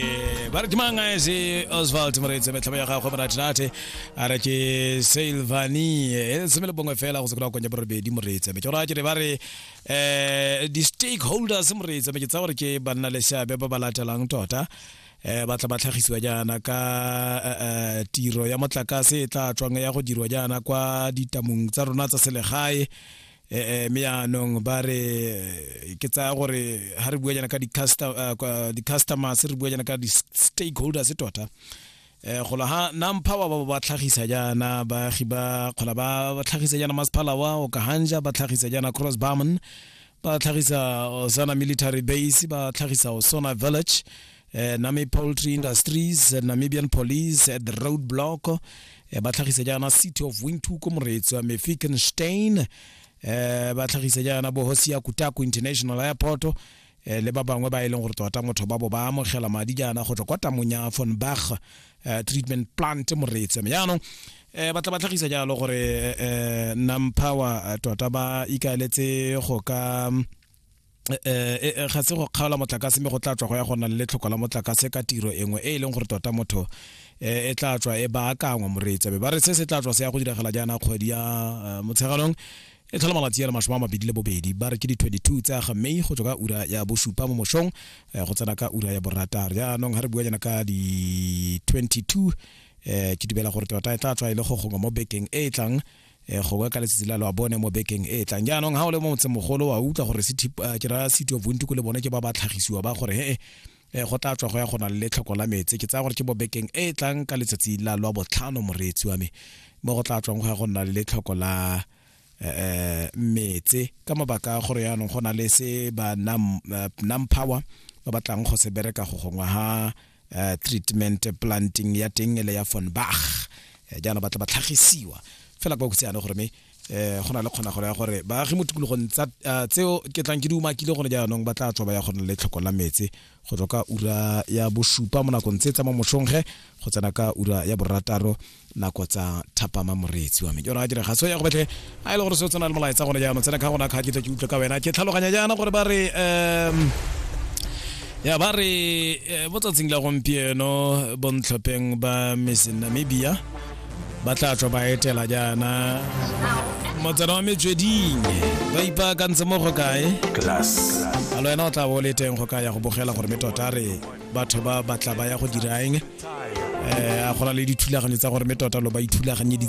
Eh, ba re ke mang a se oswald moreetse metlhamo ya gagwe moratinate a re ke silvani e seme le bongwe fela go se kry-a konya borobedi moreetse me ke gore a kere ba re um di-stakeholders moreetse me ke tsa gore ke banna le seabe ba ba latelang tota eh ba tla ba tlhagisiwa jaana ka eh, eh, tiro ya motlakase e tla tswang ya go dirwa jaana kwa ditamong tsa rona tsa selegae ee mme yaanong ba re eh, ke tsaya gore ga re bua jana ka eh, di-customers re bua jana ka di-stakeholders tota eh gola ha nampha wa ba ba tlhagisa jana baagi ba gola ba tlhagisa jana masiphala wa o kahanja ba tlhagisa jana cross barman ba tlhagisa osana military base ba tlhagisa osona village eh, Nami Poultry Industries, eh, Namibian Police at the Roadblock, eh, ba tlhagisa jaana City of Windhoek ko Moretso, Mefikenstein, eh, ba tlhagisa jaana bo Hosia Kutaku International Airport, eh, le ba bangwe ba e leng gore tota motho ba bo ba amogela madi jaana go tswa kwa tamong ya von bach eh, treatment plant moreetse me jaanong eh, ba tla ba tlhagisa jalo gore eh, eh, nampower eh, tota ba ikaeletse go ka Eh, eh, eh, ga se go kgaola motlakase mme go tla tswa go ya go na le tlhoko la motlakase ka tiro engwe e e leng gore tota motho e tla tswa e baakangwa moreetsa be ba re se se tla tswa se ya go diragala jaana kgwedi ya motsheganong e tlhola malatsi a le masome a mabedi le bobedi ba re ke di-22 tsa ga may go tswa ka ura ya bosupa mo mosong go tsena ka ura ya boratar jaanong ga re bua jana ka di-22 um ke dumela gore tota e tla tswa e le go gongwe mo bekeng e e tlang e gongwe ka letsatsi la lo a bone mo bekeng e tlang jaanong ga o le mo motsemogolo wa utlwa gore ke ra city of bonti ko le bone ke ba ba tlhagisiwa ba gore ee um go tla tswa go ya go na le letlhoko la metse ke tsaya gore ke mo bekeng e tlang ka letsatsi la lwa botlhano moreetsi wa me mo go tla tswang go ya go nna le letlhoko la um metse ka mabaka a gore yaanong go na le se ba nam power ba batlang go se bereka go gongwe ha uh, treatment planting ya teng le ya von bach eh, jaanong ba tla ba tlhagisiwa fela kwa kutseane gore me eh go na le kgona gore ya gore baagi mo tikologong tsa eh, tseo ke tlang ke di umakile gone jaanong ba tla tswa ba ya go le tlhoko la metse go tswa ka ura ya bosupa mo nakong tse tsa mo mosongge go tsena ka ura ya borataro nako tsa thapama moreetsi wa me jora a dira ga so ya go betlhe a e le gore se o tsena le molaetsa gone jaanong tsena ka gona kga ke tle ke utlwe ka wena ke tlhaloganya jaana gore ba re um ya ba re eh, mo tsatsing la gompieno bontlhopheng ba miss namibia ba tla tlo ba etela jaana motsana wa metsweding ba ipaakantse mo go kae Class. a le wena o tla bo o le teng go ka ya go bogela gore me tota re batho ba batla ba ya go dira eng um a go na le dithulaganyo tsa gore mme tota lo ba ithulaganyeditse